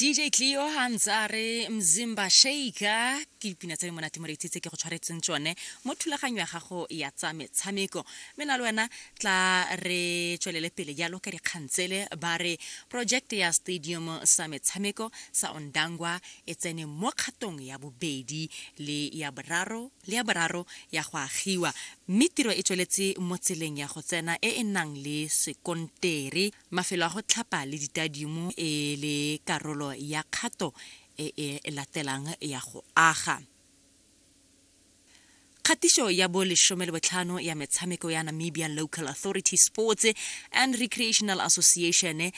dj cleo ha ntse a re mzimba shaker ke dipina tse di monate moreetsi tse ke go tshwaretseng tsone mo thulaganyo ya gago ya tsa metshameko mme na le wena tla re tswelele pele jalo ka dikgang tsele ba re project ya stadium sa metshameko sa ondangwa e tsene mo kgatong ya bobedi le ya boraro le ya boraro ya go agiwa mme tiro e tsweletse mo tseleng ya go tsena e e nang le sekontere Mafelo a go tlhapa le ditadiumo e le karolo ya kgato e e latelang ya go aga. Kgatiso ya bo lesome le botlhano ya metshameko ya Namibian Local Authority Sports and Recreational Association eh,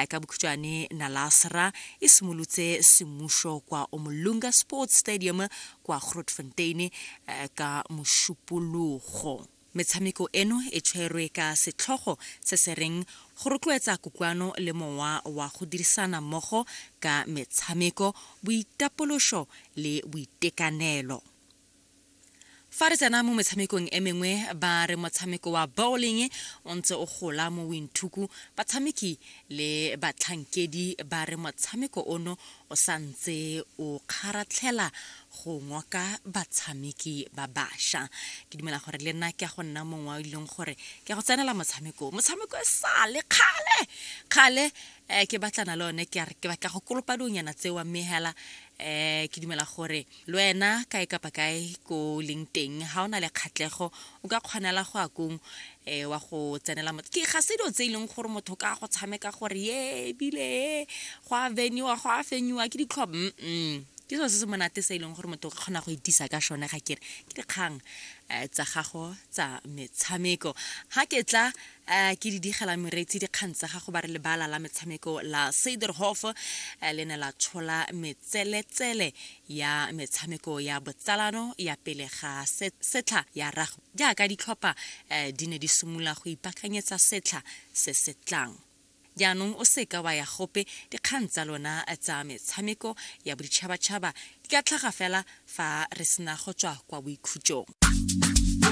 ka bokhutshwane Nalasra e simolotse semmuso kwa Omolunga Sports Stadium kwa Grootfontein eh, ka mošupologo. Metshameko eno e tshwerwe ka setlhogo se se reng Go Rotloetsa Kutlwano le Mowa wa go Dirisana Mmogo ka Metshameko, Boitapološo le Boitekanelo. Fa re tsena mo metshamekong e mengwe, ba re motshameko wa bowling o ntse o gola mo Windhoek, batshameki le batlhankedi ba re motshameko ono o sa ntse o kgaratlhela go ngoka batshameki ba basha ke dumela gore le nna ke ya go nna mongwe wa ileng gore ke ya go tsenela motshameko motshameko e sale kgale kgale um ke batlana le one ke ke batla go kolopa dionyana tseo mme hela um ke dumela gore le wena kae kapa kae ko leng teng ga o na le kgatlhego o ka kgonela go ya kong um wa go tsenela motho ke ga se dilo tse e leng gore motho ka go tshameka gore ye ebile e go a veniwa go a fenyiwa ke ditlhobo mm ke selo se se monate se e leng gore motho o ka kgona go itisa ka sone ga kere ke dikgang um tsa gago tsa metshameko ga ke tla A ke di digela mereetsi dikgang tsa gago ba re lebala la metshameko la Suiderhof le ne la tshola metseletsele ya metshameko ya botsalano ya pele ga setlha ya rugby jaaka ditlhopha di ne di simolola go ipaakanyetsa setlha se se tlang. Jaanong o se ka wa ya gope, dikgang tsa lona tsa metshameko ya boditšhabatšhaba di ka tlhaga fela fa re sena go tswa kwa boikhutsong.